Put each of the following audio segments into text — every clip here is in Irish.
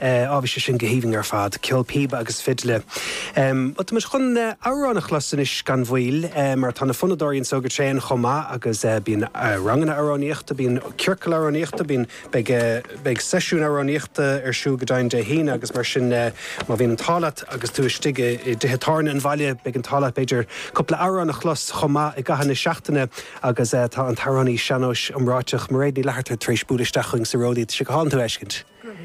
Á, bhí sé sin go haoibhinn ar fad. Ceol píoba agus fidle. Bhuel, tá muid chun amhrán a chlos anois gan mhoill, mar tá na fonnadóirí anseo go tréan chomh maith agus bíonn ranganna amhránaíochta, bíonn ciorcail amhránaíochta, bíonn, beidh, beidh seisiúin amhránaíochta ar siúl go deimhin Dé hAoine agus mar sin má bhíonn an t-ádh leat agus tú istigh i dtithe tábhairne an bhaile, beidh an t-ádh leat b'fhéidir cúpla amhrán a chlos chomh maith i gcaitheamh na seachtaine agus tá an t-amhránaí sean-nóis iomráiteach Mairéad Ní Fhlatharta tar éis bualadh isteach chugainn sa Ródaí. Tá sé go hálainn tú a fheiscint.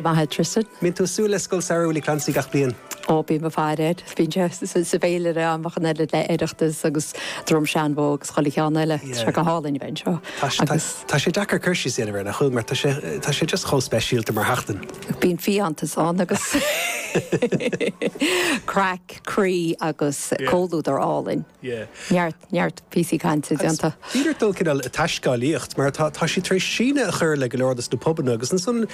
Maith a Tristan. Mbíonn tú ag súil le Scoil Samhraidh Willie Clancy gach bliain? Ó, bím i bhfad air. Bíonn sé sa bhféilire a'm ach an oiread le Oireachtas agus Droim Seanbhó agus chuile cheann eile. Tá sé go hálainn a bheith anseo agus. Tá sé deacair cur síos a dhéanamh air nach bhfuil mar tá sé just chomh speisialta mar sheachtain. Bíonn fiántas ann agus craic, croí agus comhluadar álainn. Neart. neart píosaí cainte déanta. Is féidir dul cineál ag taiscéalaíocht mar tá, tá siad tar éis síneadh a chur le go leor dos na pubanna agus ansan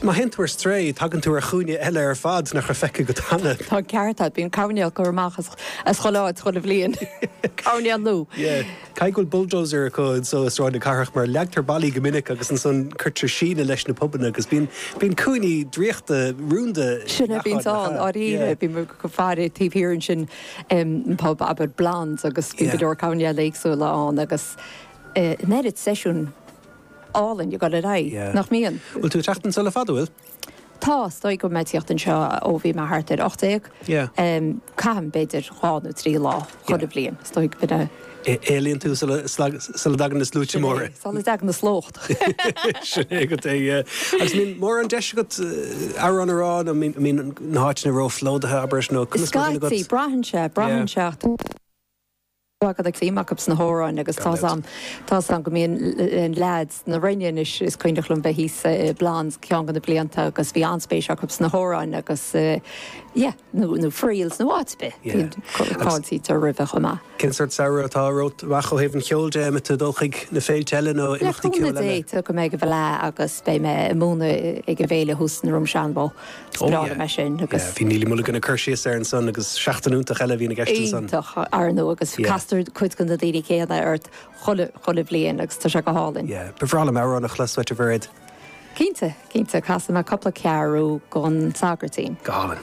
má théann tú ar strae tagann tú ar chúinne eile ar fad nach raibh feicthe agat cheana. Tá an ceart agat, bíonn coirnéil á gcur amach as chuile áit chuile bhliain, coirnéil nua. Caithfidh go bhfuil bulldozer acu anseo i Sráid na Cathrach mar leagtar ballaí go minic agus ansan cuirtear síneadh leis na pubanna agus bíonn, bíonn cúinní draíochta, rúnda i ngach áit le feiceáil. Sin é, bíonn ann, i ndáiríre, bíonn go háirithe taobh thiar ansin. bpub, abair, Blondes agus bíonn go leor coirnéil éagsúla ann agus an oiread seisiún álainn ag dul ar aghaidh, nach mbíonn? Bhfuil tú ag teacht anseo le fada, bhfuil? Tá, is dóigh go bhfuil mé ag teacht anseo ó bhí mé thart ar ocht déag. Caithim b'fhéidir dhá nó trí lá chuile bhliain, is dóigh. Éalaíonn tú sula dtagann na sluaite móra. Sula dtagann na slóchta. Sin é agat é, yeah. Agus an mbíonn mórán deis agat amhrán a rá nó an mbíonn na háiteanna róphlódaithe, abair, nó Is conas mar a bhíonn scaití, agat? braitheann sé, Yeah. braitheann sé ach tá's agad tá suim acub sna hamhráin agus Gan tá's dabht. a'm, tá's a'm go mbíonn na leaids na Rinne anois, is cuimhneach liom bheith thíos i Blondes ceann de na blianta agus bhí an-spéis acub sna hamhráin agus eh yeah. nó Friels nó áit ar bith. Fáiltítear roimhe chomh maith. Cén sórt samhradh atá romhat amach ó thaobh an cheoil de? An mbeidh tú ag dul chuig na féilte eile nó imeachtaí ceoil eile? Le cúnamh Dé, gabhfaidh mé ag an bhfleadh agus beidh mé ag múineadh ag an bhféile thuas i nDroim Seanbhó. Is breá liom é sin. Bhí Neilly Mulligan ag cur síos air ansan agus seachtain iontach eile a bhíonn i gceist ansan. Iontach, ar ndóigh, agus castar cuid de na daoine céanna ort chuile bhliain agus tá sé go hálainn. Ba bhreá liom amhrán a chlos uait, a Mhairéad. Cinnte, cinnte, casfaidh mé cupla ceathrú den tSagairtín. Go hálainn.